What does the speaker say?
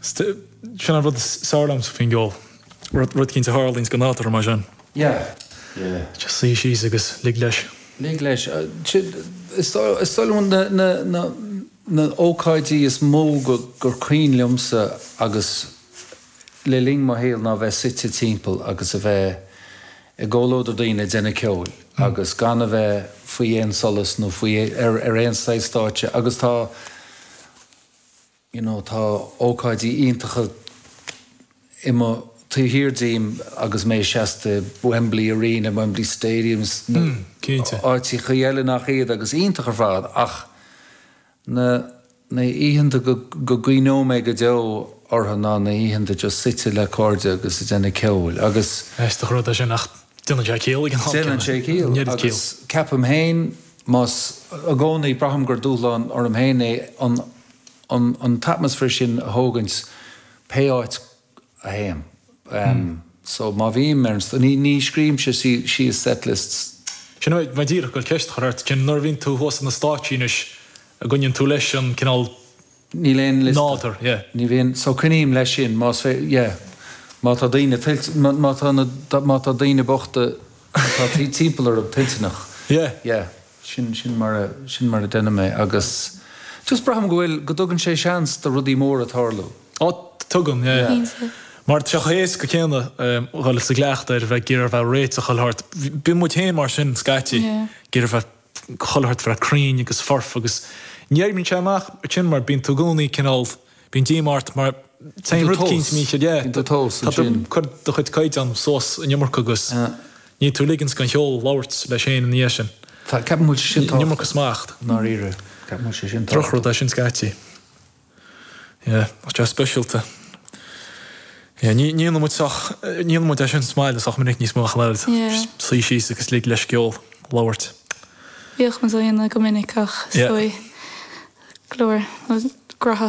Sin an rud is fearr liomsa faoin gceol. Rud cinnte tharlaíonn is go n-áiteofar mar sin. Yeah. Suigh síos agus lig leis. Lig leis. Is dóigh liom na h-ócáidí is mó gur cuimhin liomsa le linn mo shaoil ná bheith suite timpeall agus a bheith i gcomhluadar daoine ag déanamh ceoil agus gan a bheith faoi aon solas nó faoi ar aon saghas stáitse agus tá you know tá ócáidí iontacha taobh thiar díom agus mé seasta i Wembley Arena, Wembley Stadium, áiteacha eile nach iad agus iontach ar fad ach. na hoícheanta go gcuimhneoidh mé go deo orthu ná na hoícheanta just suite le cairde agus ag déanamh ceoil agus. Aisteach rud é sin ach déanann sé ciall ag an am céanna. Déanann sé ciall agus ceapaim féin mé i gcónaí, braithim gur dúshlán orm féin é an t-atmaisféar sin a thógaint pé áit go. bhím. So, má bhím ar an, ní, ní scríobhaimse síos set-lists. Sin é, bhí mé díreach ag dul ceist a chur ort, cén, nuair a bhíonn tú thuas ar na stáitsí anois an gcoinníonn tú leis an cineál Níl aon liosta. nádúr, yeah. Ní bhíonn, so coinním leis sin, más féidir, yeah. Má tá daoine tuillte, má, má tá na, má tá daoine bochta atá timpeall orm toilteanach, Yeah. yeah. sin, sin mar a, sin mar a dhéanaim é agus just braithim go bhfuil, go dtugann sé seans do rudaí móra tarlú. Á, tugann, yeah, yeah. Mar tá sé éasca go leor, dul sa gcleachtadh a bheith ag iarraidh a bheith réitithe, chuile shórt. Bíonn muid féin mar sin scaití, ag iarraidh a bheith, chuile shórt a bheith cruinn agus foirfe agus ní oibríonn sé amach sin mar bíonn tú i gcónaí cineál, Bíonn díoma ort má théann rud éicint mícheart, é, tá tú ag cur do chuid caighdeán suas an iomarca agus níl tú ag ligean don cheol labhairt leis féin ina dhiaidh sin. An iomarca smacht. Drochrud é sin scaití. Go speisialta. Ní dhéanann muid sách, ní dhéanann muid é sin sa mbaile sách minic níos mó ach an oiread. Suí síos agus lig leis an gceol labhairt. Bhíodh muid á dhéanamh go minic ach is dóigh go leor grá.